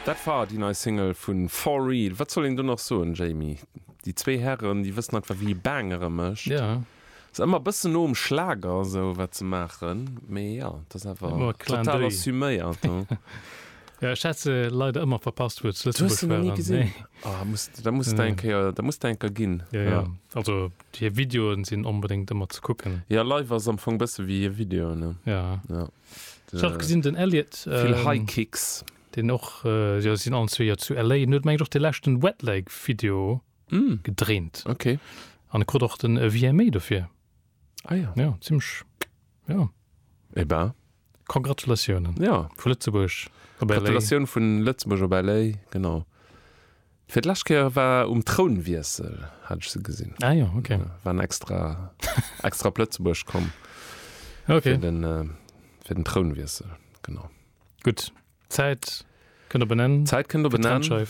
Dat war déi nei Single vu For Real. Wat soll een do nach soen, Jamie? Déi zwee Hären, déi wëssen einfach, wéi ee Bangere mécht. Ass ëmmer e bëssen no um Schlager esou, wat se maachen, mee jo, et ass awer total assuméiert. Jo, ech hat se leider ëmmer verpasst, wou et zu Lëtzebuerg waren. Du hues se nach ni gesinn? Oh, da muss, da muss der eng Kéier, da muss der eng Kéier ginn. Jo, jo, also hir Videoen sinn onbedéngt ëmmer ze kucken. Jo, live ass am Fong bësse wéi hir Videoen, ne? Jo. Ech hat gesinn den Elliott, vill High Kicks. Deen och jo sinn allen zwee jo zu LA. En huet mengt och de leschten Wet Leg Video gedréint. Ok. An e krut och den VMA dofir. Ah ja. Jo, zimmlech jo. Eh ben. Congratulatiounen. Jo. Vu Lëtzebuerg op LA. Gratulatioun vun Lëtzebuerg op LA, genau. Fir d'lescht Kéier war um Trounwiessel, hat ech se gesinn. Ah jo, ok. Waren extra, extra op Lëtzebuerg komm. Ok. Fir den, fir den Trounwiessel, genau. Gutt, d'Zäit kënnt op en Enn. D'Zäit kënnt op en Enn. Fir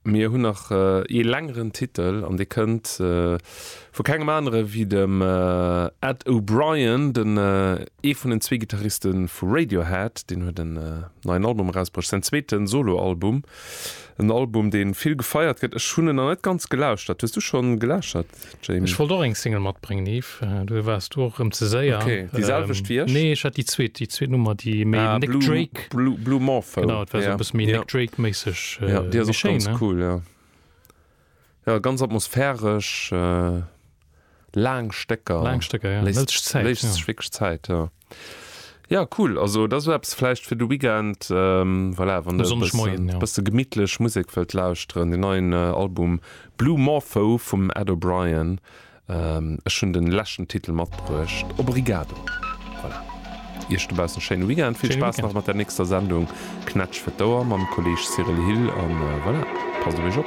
Mir hunn nach ee längeren Titel an dee kënnt vu kengem anere wéi dem Ed O'Brien, den ee vun den zwee Gittariste vu Radiohead. Deen huet en neien Album erausbruecht, säin zweete Soloalbum. En Album deen vill gefeiert gëtt. Ech hunn en nach net ganz gelauschtert. Hues du schonn gelauschtert Jamie? Ech wollt och eng Single matbréngen Yves, du du waars du och erëm ze séier. Ok, déi selwecht wéi ech? Nee ech hat déi zweet, déi zweet Nummer déi méi Ah Nick Blue Drake, Blue Blue Morpho genau et war esou e ja bësse méi ja Nick Drake méisseg, ja déi ass méi och schéin ganz ne? cool ja. Jo, ganz atmosphäresch, laang Stécker. Laang Stécker, jo. Léisst sech Zäit. Léisst sech wierklech Zäit, jo. Jo, cool. Also dat ass esou eppes vläicht fir de Weekend, voilà, wann de e bëssen, e bësse gemittlech Musek wëllt lauschteren. Den neien Album Blue Morpho vum Ed O'Brien. Ech hunn de leschten Titel matbruecht. Obrigado. Voilà. Iech dobaussen e schéine Weekend. Vill Spaass nach mat der nächster Sendung Knätsch fir d'Ouer mam Kolleeg Cyril Hill. An voilà, passt op Iech op.